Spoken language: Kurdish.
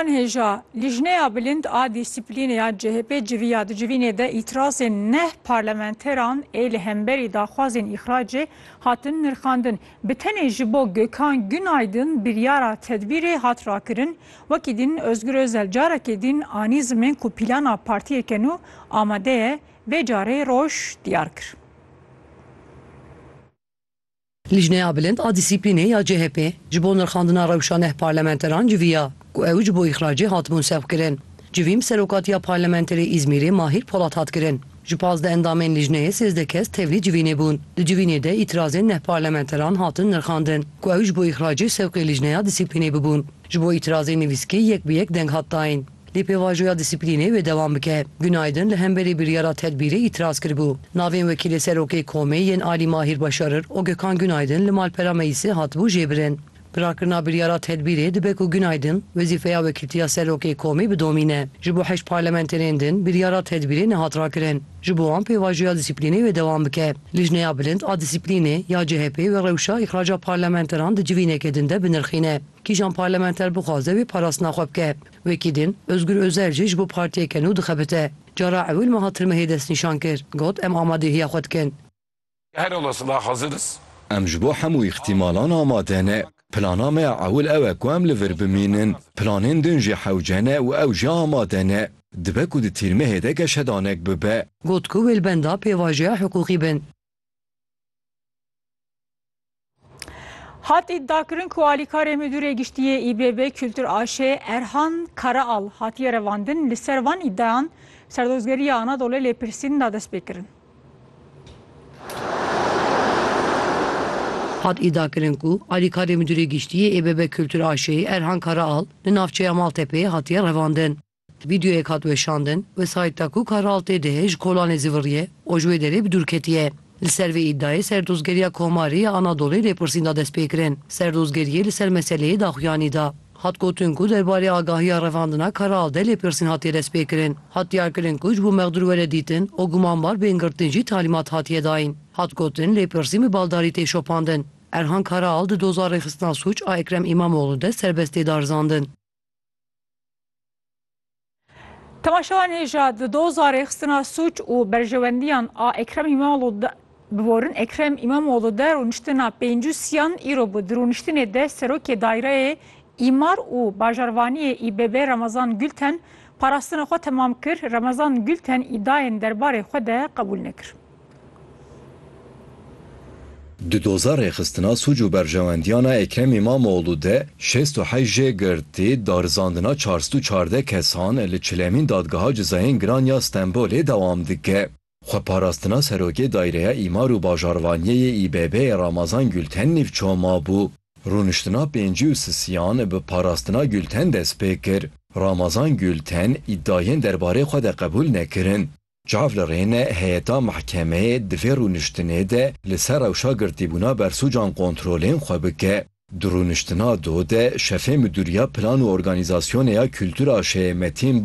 Hêja Lijneya Bilind a Dîsîplînê ya CHP'ê civiya di civînê de îtirazên neh parlamenteran ê li hemberî daxwazên îxracê hatin nirxandin. Bi tenê ji bo Gökhan Günaydın biryara tedbîrê hat rakirin. Wekî din Ozgur Ozel carekê din anî zimin ku plana partiyeke nû amade ye. Vê carê roj diyar kir. Lijneya Bilind a Dîsîplînê ya CHP'ê ji bo nirxandina rewşa neh parlamenteran civiya ku ew ji bo îxracê hatibûn sevkirin. Civîn bi serokatiya parlamenterê Îzmîrê Mahîr Polat hat kirin. Ji pazdeh endamên lijneyê sêzdeh kes tevlî civînê bûn. Di civînê de îtirazên neh parlamenteran hatin nirxandin ku ew ji bo îxracê sewqê lijneya Dîsîplînê bibûn. Ji bo îtirazên nivîskî yek bi yek deng hat dayîn. Lê pêvajoya dîsîplînê wê dewam bike. Günaydin li hemberî biryara tedbîrê îtiraz kiribû. Navên wekîlê serokê komê yên Alî Mahîr Başarir û Gökhan Günaydin li malpera meclîsê hatibû jêbirin. Bi rakirina biryara tedbîrê dibe ku Günaydin wezîfeya wekîltiya serokê komê bidomîne. Ji bo heşt parlamenterên din biryara tedbîrê nehat rakirin. Ji bo wan pêvajoya dîsîplînê wê dewam bike. Lijneya Bilind a Dîsîplînê ya CHP'ê wê rewşa îxraca parlamenteran di civîneke din de binirxîne. Kîjan parlamenter bixwaze wê parastina xwe bike? Wekî din, Ozgur Ozel jî ji bo partiyeke nû dixebite. Cara ewil meha Tirmehê destnîşan kir, got, Em amadehîya xwe dikin. Em ji bo hemû îxtîmalan amade ne. Plana me ya ewil ew e ku em li vir bimînin. Planên din jî hewce ne û ew jî amade ne. Dibe ku di Tîrmehê de geşedanek bibe. Got ku wê li benda pêvajoya hiqûqî bin. Hat îdiakirin ku alîkarê Midûrê Giştî yê İBB Kultur AŞ Erhan Karaal hatiye revandin li ser van îdiayan Serdozgeriya Anadolê lêpirsîn da dest pê kirin. Hat îdiakirin ku alîkarê Midûrê Giştî yê İBB Kultur AŞ Erhan Karaal li navçeya Maltepê hatiye revandin. Vîdeoyek hat weşandin, Wesayît Takûk a Raltê de ji kolanê zî viriye û ji wê derê bi dûr ketiye. Li ser vê îdayê Serdozgeriya Komarê ya Anadolê lêpirsîn da destpêkirin. Serdozgeriyê li ser meseleyê daxuyanî da. Hat gotin ku der barê agahiya revandina Karal de lêpirsîn hatiye destpêkirin. Hat diyarkirin ku ji bo mexdûr were dîtin û gumanbar bên girtin jî talîmat hatiye dayin. Hat gotin lêpirsîn bi baldarî tê şopandin. Erhan Karal di doza rêxistina sûc a Ekrem Îmamoglû de serbest tê darizandin. Temaşewan hêja di doza rêxistina sûc û berjewendiyan a Ekrem Îmamoğlu bi vorin Ekrem Îmamoğlu de rûniştina pêncû siyan îro bi di rûniştinê de serokê daîreyê Îmar û bajarvaniyê İBB Ramazan Gülten parastina xwe temam kir. Ramazan Gülten îdayên derbarê xwe de qebûl nekir. Di doza rêxistina sûc û berjewendiyana Ekrem Îmamoglû de şêst û heşt jê girtî, darizandina çar sed û çardeh kesan li çilemîn Dadgeha Cizayên Giran ya Stenbolê dewam dike. Xweparastina Serokê Dayreya Îmar û Bajarvaniyê yê İBB'ê Ramazan Gülten nîvço mabû. Rûniştina pêncî û sisiyan bi parastina Gülten dest pê kir. Ramazan Gülten îdayên derbarê xwe de qebûl nekirin. Çav li rêne heyeta mehkemeyê di vê rûniştinê de li ser rewşa girtîbûna bersûcan kontrolên xwe bike. Di rûniştina do de şefê Midûriya Plan û Organîzasyonê ya Kultura şêyê Metîn